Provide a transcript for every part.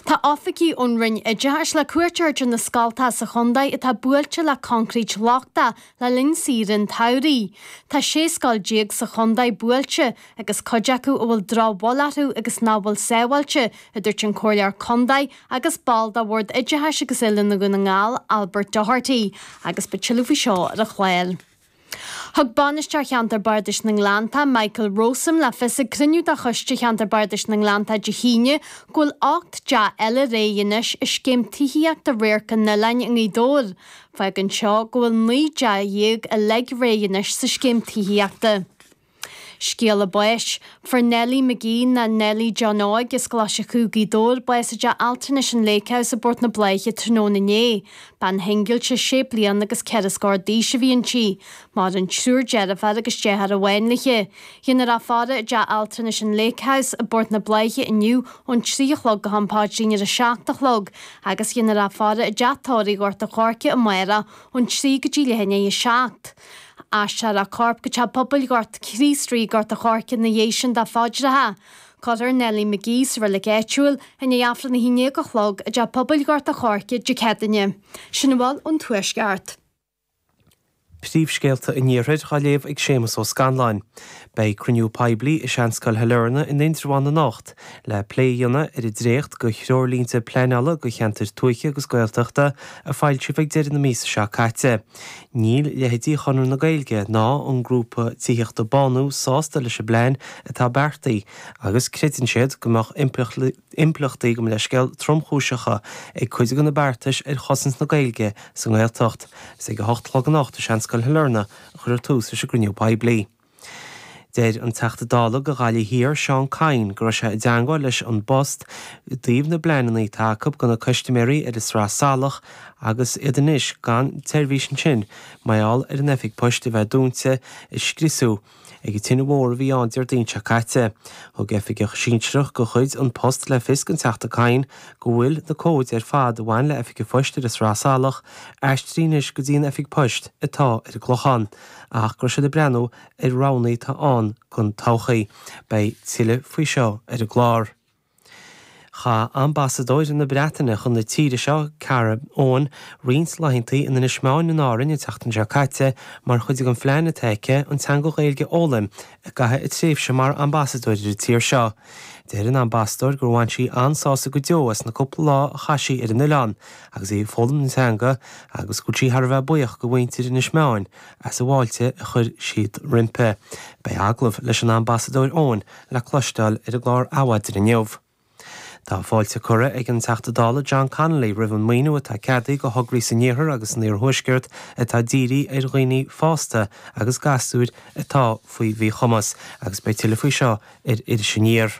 Tá oifigigh ón Roinn Oideachais le cuairt a thabhairt ar na scoltaà sa chondae atá buailte le coincréit lochtach le linn saoire an tsamhraidh. Tá 16 scoil sa chondae buailte agus cuid acu a bhfuil drochbhail orthu agus nach bhfuil sábháilte, a dúirt an Comhairleoir Condae agus ball de Bhord Oideachais agus Oiliúna Dhún na nGall, Albert Doherty, agus beidh tuilleadh faoi seo ar an chlár. Thug Bainisteoir Cheantar Bardais na nGleanntach, Michael Rowsome, le fios ag cruinniú de Choiste Cheantar Bardais na nGleanntach Dé hAoine go bhfuil ocht dteach eile réidh anois i scéim tithíochta Radharc an Oileáin i nGaoth Dobhair. Fágann seo go bhfuil naoi dteach déag uilig réidh anois sa scéim tithíochta. Scéala báis, Fuair Nellie McGee, nó Nellie John Óig, as Glaschú, Gaoth Dobhair, bás i dteach altranais an Lake House i bPort na Blaiche tráthnóna inné. Bean shingilse sé bliana agus ceithre scór d'aois a bhí inti. Maireann triúr deirféar agus deartháir amháin léithe. Déanfar í a fhaire i dteach altranais an Lake House i bPort na Blaiche inniu ón trí a chlog go ham Paidrín ar a seacht a chlog agus déanfar í a fhaire i dteach tórraimh Ghort an Choirce amárach ón trí go dtí leath i ndiaidh a seacht. Aistreofar a corp go teach pobail Chríost Rí, Gort an Choirce ina dhiaidh sin do phaidreacha. Cuirfear Nellie McGee sa reilig áitiúil i ndiaidh Aifreann a haon déag a chlog i dteach pobail Ghort an Choirce Dé Céadaoin. Sin a bhfuil ón Tuaisceart. Príomhscéalta an Iarthair dhá léamh ag Séamus Ó Scanláin. Beidh cruinniú poiblí i Seanscoil Shailearna in Indreabhán anocht le plé a dhéanamh ar an dréacht go threoirlínte pleanála go cheantair tuaithe agus Gaeltachta a foilsíodh ag deireadh na míosa seo caite. Níl leitheidí Chonradh na Gaeilge ná an grúpa tithíochta Bánú sásta leis an bplean atá beartaithe agus creideann siad go mbeadh impleachtaí gan leithscéal tromchúiseacha ag cuid de na beartais ar chosaint na Gaeilge sa nGaeltacht. Is ag a hocht a chlog anocht i Seanscoil Shailearna a chuirfear tús leis an gcruinniú poiblí. Deir an Teachta Dála go Ghaillimh Thiar, Seán Kyne, go raibh sé i dteangmháil leis An bPost i dtaobh na bpleananna atá acu do na custaiméirí ar an tSraith Salach agus iad anois gan tseirbhís ansin mar gheall ar an Oifig Poist a bheith dúnta, a scriosadh ag an tine mhór a bhí ann Déardaoin seo caite. Thug oifigeach sinsearach de chuid An Post le fios don Teachta Kyne go bhfuil na cóid ar fad a bhain le Oifig an Phoist ar an tSraith Salach aistrithe anois go dtí an Oifig Poist atá ar an gClochán. ach go bhfuil siad ag breathnú ar roghanna atá ann don todhchaí. Beidh tuilleadh faoi seo ar an gclár. Chaith Ambasadóir na Breataine chun na tíre seo, Kara Owen, roinnt laethanta in Inis Meáin in Árainn an tseachtain seo caite mar chuid den phlean atá aici an teanga Ghaeilge a fhoghlaim I gcaitheamh a tréimhse mar ambasadóir ar an tír seo, deir an ambasadóir gur bhain sí an-sásamh go deo as na cúpla lá a chaith sí ar an oileán agus í ag foghlaim na teanga agus go bhfuil sí thar a bheith buíoch de mhuintir Inis Meáin as an bhfáilte a chuir siad roimpi. Beidh agallamh leis an Ambasadóir Owen le cloisteáil ar an gclár Adhmhaidin inniu. Tá fáilte curtha ag an Teachta Dála John Connolly roimh an maoiniú atá ceadaithe do thograí san Iarthar agus san Iarthuaisceart atá dírithe ar dhaoine fásta agus gasúir atá faoi mhíchumas agus beidh tuilleadh faoi seo ar Iris Aniar.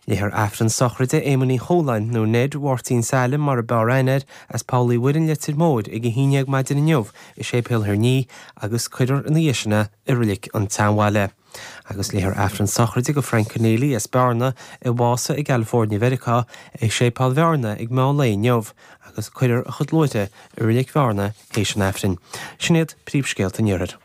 Léifear Aifreann sochraide Éamoin Uí Chualáin, nó Ned, Mháirtín Tom mar ab fhearr aithne air, as Poll Uí Mhuirinn, Leitir Móir, ag a haon dhéag maidin inniu i Séipéal Thír an Fhia agus cuirfear ina dhiaidh sin é i Reilig an tSeanbhaile. Agus léifear Aifreann sochraide do Frank Conneely as Bearna a bhásaigh i gCalifoirnea Mheiriceá i Séipéal Bhearna ag meán lae inniu agus cuirfear a chuid luaithre i Reilig Bhearna théis an Aifrinn. Sin iad príomhscéalta an Iarthair.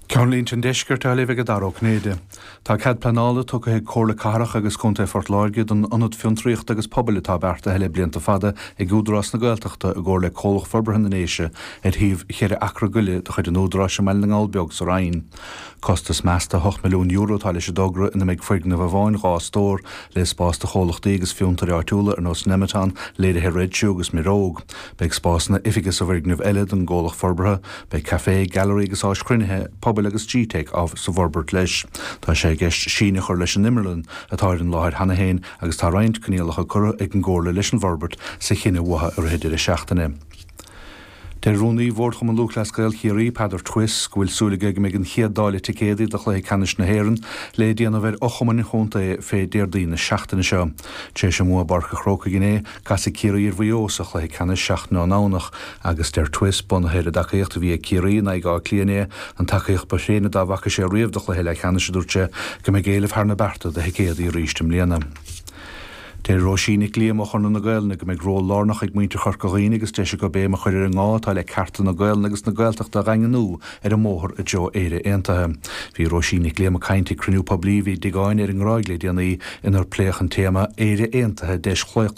Ceannlínte an Deiscirt á léamh ag Dara Ó Cinnéide. Tá cead pleanála tugtha ag Comhairle Cathrach agus Contae Phort Láirge don ionad fiontraíochta agus pobail atá beartaithe le blianta fada ag Údarás na Gaeltachta i gcomhar le Comhlacht Forbartha na nDéise ar shuíomh cheithre acra go leith de chuid an Údaráis i mBaile na nGall Beag sa Rinn. Costas measta €8 milliún atá leis an dtogra ina mbeidh foirgneamh amháin, dhá stóir, le spás do chomhlachtaí agus fiontair áitiúla ar nós Nemeton, Léirithe Red Shoe agus Muireog. Beidh spásanna oifige sa bhfoirgneamh eile don gcomhlacht forbartha. Beidh café, gallery agus áis chruinnithe pobail agus gteic sa bhforbairt leis. Tá sé i gceist síneadh a chur leis an imearlann atá ar an láthair cheana féin agus tá roinnt coinníollacha curtha ag an gcomhairle leis an bhforbairt sa chinneadh uatha i rith an deireadh seachtaine. Deir Rúnaí Bhord Chumann Lúthchleas Gael Chiarraí, Peadar Twiss, go bhfuil súil aige go mbeidh an chéad dáileadh ticéadaí do chluiche ceannais na hÉireann le déanamh ar fhochumainn an chontae fé Déardaoin na seachtaine seo. Tar éis a mbua i bPáirc a' Chrócaigh inné, casfaidh Ciarraí ar Mhaigh Eo sa chluiche ceannais seachtain ón nDomhnach agus deir Twiss, bunaithe ar an dtacaíocht a bhí ag Ciarraí in aghaidh Átha Cliath inné, an tacaíocht ba thréine dá bhfaca sé riamh do chluiche leathcheannais, a dúirt sé, go mbeidh éileamh thar na bearta do thicéadaí arís i mbliana. Deir Róisín Nic Liam ó Chonradh na Gaelainne go mbeidh ról lárnach ag muintir Chorca Dhuibhne agus deis acu béim a chur ar an ngá atá le cearta na Gaelainne agus na Gaeltachta a dhaingniú ar an mbóthar i dtreo Éire Aontaithe. Bhí Róisín Nic Liam ag caint ag cruinniú poiblí a bhí i dTigh Áine ar an nGráig le déanaí inar pléadh an téama, Éire Aontaithe, Deis Chlaochlaithe.